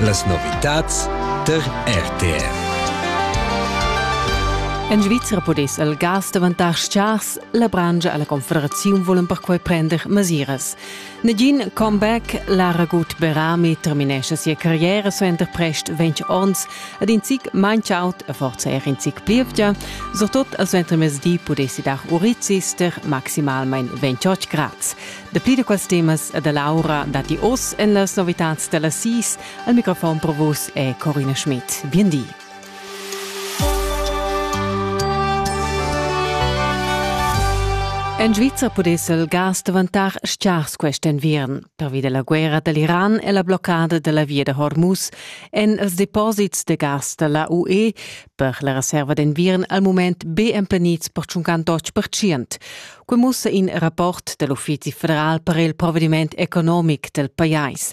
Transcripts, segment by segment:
Las novitads tar RTR. En Svizra pudess il gas daventar scars, la brangia e la Confederaziun volan perquai prender mesiras. Negin comeback, Lara Gut-Berami terminesce sia carriera suenter prest 20 onns ed in zic manch out e forza er in zic plievgia, surtot a suenter mezdi pudessi dar urizister maximalmain 28 grads. Dapli da quels temas e da l'aura datti oz en las novitads da las sis. Al microfon per vus è Corina Schmidt. Bien di. En Svizra pudess il gas daventar stgars quest enviern. Pervi da la guerra da l'Iran e la bloccada da la via da Hormuz èn els deposits de gas da la UE per la reserva d'enviern al mument be emplenids per 58%. che mussa in rapport dal Uffizi federal per il provvediment economic del pajais.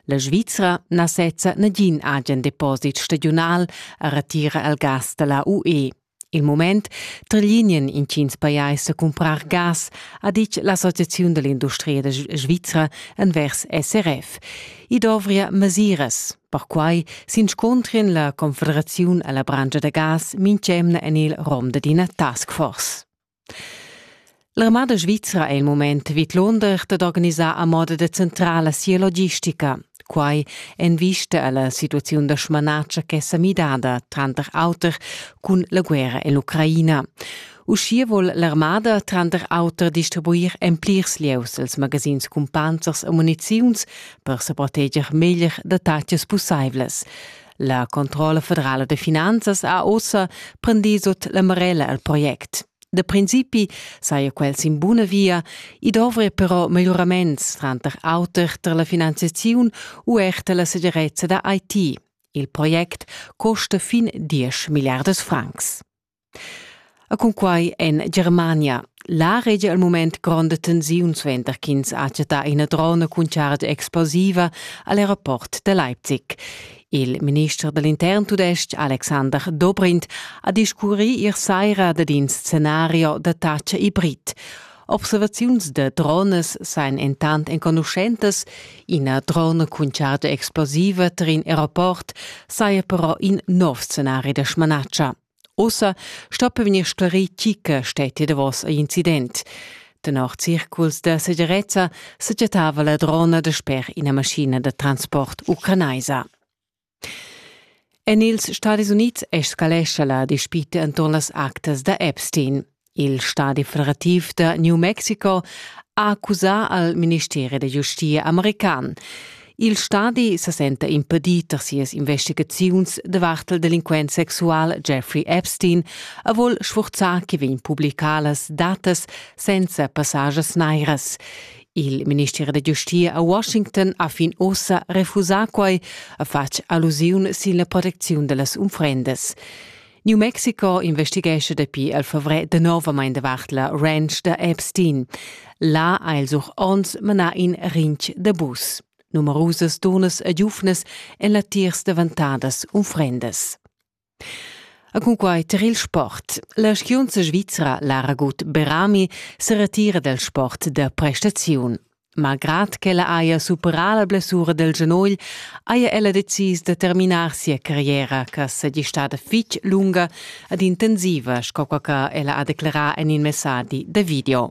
La Svizra na sezza nagin agen deposit stagiunal a retira al gas da la UE. Il moment trilinien in cins pajais a cumprar gas, ha ditg l'Associaziun dell'industria svizra envers SRF. I dovria mesiras. Perquai s'inscontrien la Confederaziun alla brangia da gas mintg'emna en il rom d'ina task force. L'armada svizra è il mument vidlunder dad organisar a moda decentrala sia logistica. Quai en vista a la situaziun da smanatscha ch'è sa midada tranter auter cun la guerra en l'Ucraina. Uschia vuol l'armada tranter auter distribuir en plirs lieus els magazins cumpanzers e muniziuns per sa proteger meglier da tatgas pussaivlas. La Controlla federala de finanzas ha ossa prendì sut la marella al project. Da principi saja quel sin buna via, i dovria però miglioraments tranter auter tar la finanziaziun u er tar la segirezza da IT. Il project costa fin 10 milliardas francs. E cun quai en Germania. La regia al mument gronda tensiun suenter ch'ins ha chattà ina drona cun chargia explosiva al aeroport da Leipzig. Il minister dall'intern tudestg Alexander Dobrindt ha discurrì ier saira dad in scenario da tatscha hibrid. Observaziuns da drones sain entant enconuschentas. Ina drona cun charta explosiva tar in aeroport saja però in nov scenari da smanatscha. Ossa sto vegnir sclarì chi che stetti davos a incident. Tenor circuls da segirezza sa chattava la drona dasper ina maschina da transport ucranaisa. En ils Stadis Unids escalescha la dispita enturn las actas da Epstein. Il stadi federativ da New Mexico ha accusà al ministeri da giustia american. Il stadi sa senta impedì tar sias investigaziuns davart il delinquent sexual Jeffrey Epstein a vol sfurzar che vegn publicadas datas senza passages nairas. Il minister da giustia a Washington ha fin ussa refusà quai, ha fatg allusiun sin la protecziun da las unfrendas. New Mexico investighescha dapi al favrer danovamain davart la ranch da Epstein. Là ha els auch onns manà in rinch da bus. Numerusas turnas e giuvnas en latiers davantadas unfrendas. E cunquai tar il sport. La skiunza svizra Lara Gut Berami se retira dal sport da prestaziun. Malgrad ch'ella haja superà la blessura del genogl, haja ella decis da terminar sia carriera che saja stada fitg lunga ed intensiva, sco che ella ha declerà en il messadi da video.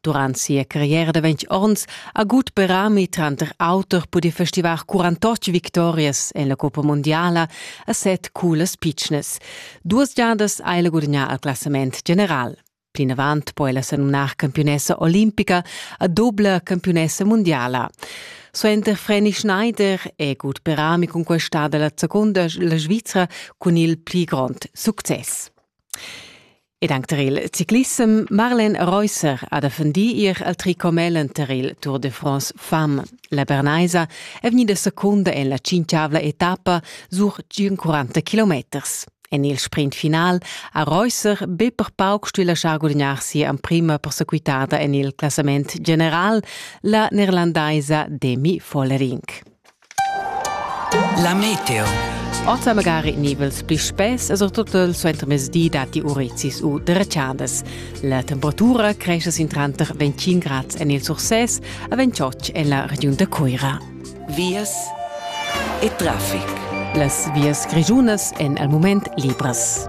Durant sia carriera da ventg onns ha gut berami tranter auter pudì festivar 48 victorias en la Coppa Mondiala a set culas pitschnas. Duas giadas ha el gudagnà il classament general. Plinavant po ella sa numnar campiunessa olimpica a dobla campiunessa mundiala. Suenter Frenny Schneider è Gut Berami conquistada la seconda la Svizra cun il pli grond success. Ed anc tar il ciclissem Marlen Reusser ha defendì ir al tricomelen tar il Tour de France Femme. La Bernaisa è vegnida secunda en la tschintgavla etappa sur 40 kilometers. En il sprint final ha Reusser be per pauc stuì laschar gudagnar sia emprima persequitada en il classament general, la neerlandaisa Demi Follerink. La meteo. Ota magari nivels pli spess e surtut il suentermezdi datti urezis u dretschadas. La temperatura cresce sin tranter 25 grad en il Surses e 28 en la regiun da Cuira. Vias e traffic. Las vias grischunas èn al mument libras.